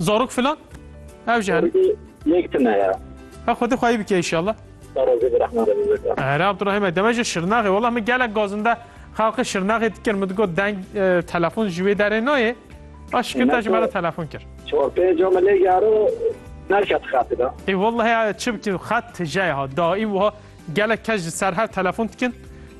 Zarok filan? Ev jî hene. Yek tune ya. Ev xwedê xwe yî bike inşallah. Razî bi rehma Rebî bike. Here Abdurrahîme deme ji Şirnexê wela min gelek gazin de xelqê Şirnexê dikir min digot deng e, telefon ji wê derê nayê. A şikir te ji me re telefon kir. Çor pênc o me lê gero nerket xatî da. Ê wellehê çi bikî xet tije ye ha. Daîm wiha gelek kes ji ser hev telefon dikin.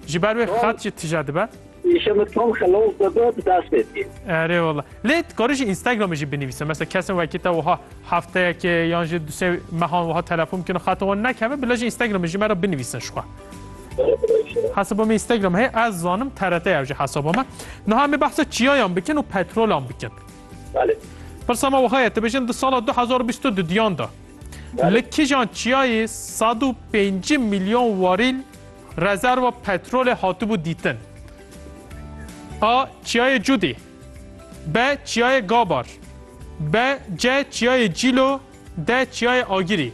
Ji ber wê xet jî tije dibe. Îşe min tam xelal bebe bi dest pê dikê. Erê wala. Lê dikarî jî Instagramê jî binivîse. Mesela kesin wekî te wiha hefteyekê yan jî du sê mehan wiha telefon bikîne xeta wan nekeve bila jî Instagramê jî me re binivîsin jixwe. Hesaba me Instagram heye ez zanim TRT ev jî hesaba me. Niha em ê behsa çiyayan bikin û petrolan bikin. Belê. Pirsa me wiha ye tu bêjin di sala du hezar û bîst û du diyan de li kijan çiyayê sed û pêncî milyon warîl Rezerwa petrolê hatibû dîtin. A. Çiyayê Cûdî B. Çiyayê Gabar B. C. Çiyayê Cîlo D. Çiyayê Agirî.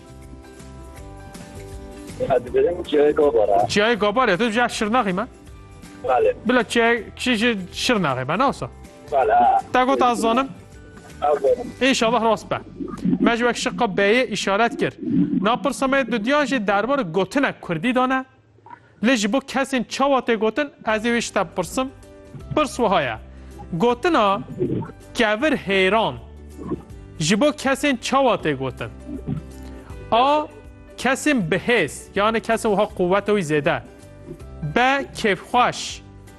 Ez dibirim çiyayê Gabar e. Çiyayê Gabar e? Tu dibêje Şirnaxê me? Belê. Bila çiyayê kişî ji Şirnaxê me ne wisa? Belê. Te got ez zanim. Ê şallah rast be. Me ji wek şiqa beyê îşaret kir. Na pirsa me di duyan jê derbarê gotinek kurdî de ne. Lê ji bo kesên çawa tê gotin ez ê wê ji te bipirsim. Pirs wiha ye. Gotina kevir hêran ji bo kesên çawa tê gotin? A. Kesên bihêz, yanê kesên wiha quweta wî zêde. B. Kêfxweş.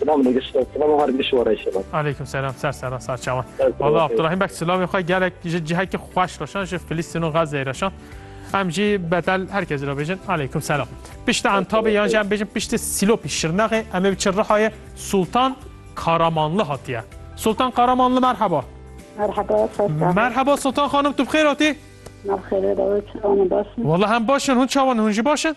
Selam Nigis, selam her giş wara inşallah. Aleyküm selam, ser ser ser çawan. Valla Abdurrahim bek selamê xwe gelek ji cihekî xweş reşan ji Filîstîn û Gazeyê reşan. Em jî betel herkesî re bêjin aleyküm selam. Piştî entabê yan jî em bêjin piştî sîlopî şirnexê em ê biçin rihayê Sultan Karamanlı hatiye. Sultan Karamanlı merhaba. Merhaba, ser çawan. Merhaba Sultan xanım tu bixêr hatî? Navxêrê davê çawanê baş in. Valla hem baş in, hûn çawan in, hûn jî baş in?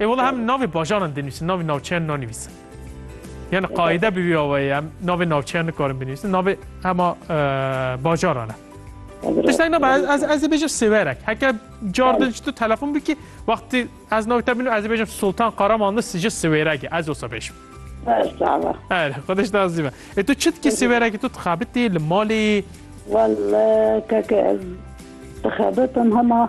Ê wela em navê bajaran dê nivîsin, navê navçeyan nanivîsin. Yani qaide bi wî awayê em navê navçeyan nikarin binivîsin, navê hema bajaran e. Tiştek ne ez ez ê bêjim Sêwerek. Heke car din tu telefon bikî wextî ez navê te bînim ez ê bêjim Sultan Qaraman di ji Sêwerekê ez olsa bêjim. Her xwediş da zîme. Ê tu çi dikî Sêwerekê tu dixebitî li malê? Wal keke ez dixebitim hema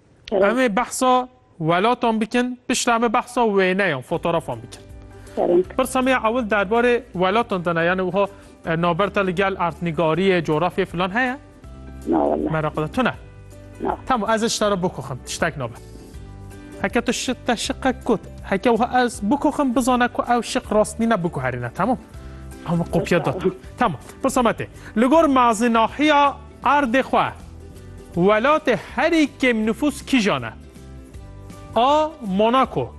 Em ê behsa welatan bikin, piştre em ê behsa wêneyan, fotoğrafan bikin. Pirsa me ya ewil derbarê welatan dana, yani wiha e, naberta li gel artnîgariyê, coğrafyê filan heye? Na wala. Meraqe de tune. Na. Tamam ez işte re bikoxim, tiştek nabe. Heke tu şi te şiqe kut, heke wiha ez bikoxim bizane ku ew şiq rastnîne biguherîne, tamam. Ama kopya da. Tamam. Pirsa me tê. Li gor mazinahiya Erdê xwe, welatê herî kêmnifûs kîjan e? A. Monako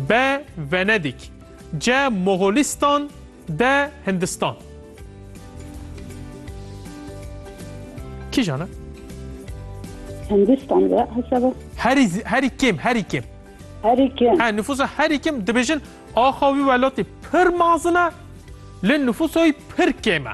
B. Venedîk C. Moxolîstan D. Hindistan Kîjan e? Hindistan be hesaba. Herî zi- herî kêm, herî kêm. Herî kêm. Ha nüfusa herî kêm dibêjin axa wî welatê pir mazin e, lê nüfusa wî pir kêm e.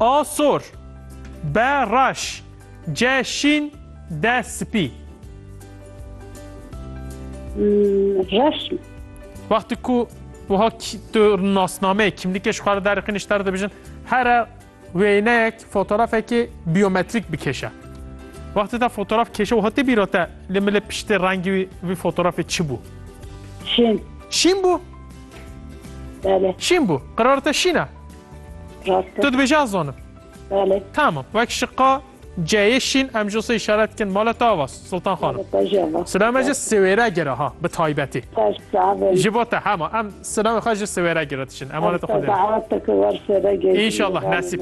A sor, B reş, C şîn, D spî. Reş. Wextê ku wiha tu nasnameyê kimlîkê ji xwe re derixîn ji te re dibêjin here wêneyek fotoğrafekê biyometrîk bikêşe. Wextê te fotoğraf kêşe wiha tê bîra te li milê piştê rengî wî vî fotoğrafê çi bû? Şîn. Şîn bû? Belê. Şîn bû. Qerara te şîn e? Rast e. Tu dibêjî ez zanim. Belê. Tamam. Wek şiqa C'yê şîn em ji sê işaret dikin mala te ava Sultan Xanim. Mala te jî ava. Silame ji siwêre gire ha bi taybetî. Te ji saxê. Ji bo te hema em silamê xwe ji siwêre gire dişin. Emanet xwe dê. Te ki wer sêre gê. İnşallah nesîb.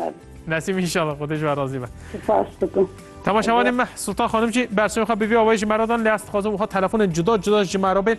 Nesîb inşallah xwe dê ji we razî be. Spas dikim. Temaşevanê me Sultan Xanim jî bersivê xwe bi vî awayî ji me re dan lê ez dixwazim wiha telefonên cuda cuda ji me re bên.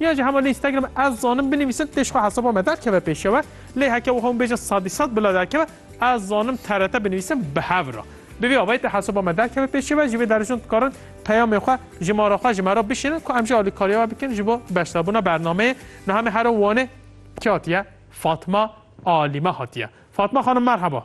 Yan jî hema li Instagram ez zanim binivîsin tê ji xwe hesaba me derkeve pêşewe lê heke wiha hûn bêjin sedî sed bila derkeve ez zanim TRT binivîsin bi hev re. Bi vî avayî tê hesaba me derkeve pêşewe ji vê deris hûn dikarin peyamên xwe ji mara xwe ji me re bişînin ku em jî alîkariya we bikin ji bo beşdarbûna bernameyê. Niha me herin Wanê kê hatiye? Fatma Alîme hatiye. Fatma xanim merheba.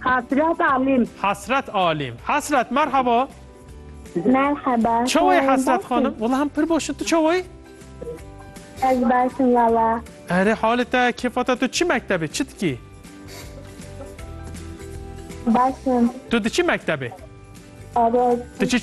Hasret Alim. Hasret Alim. Hasret merhaba. Merhaba. Çawoyê Hasret xanim? Wala em pir baş in. Tu çawoyê? Ez baş im wala. Erê halê te kêfa te tu çi mektebê? Çi dikî? Baş im. Tu diçî mektebê? Erê. Tu çi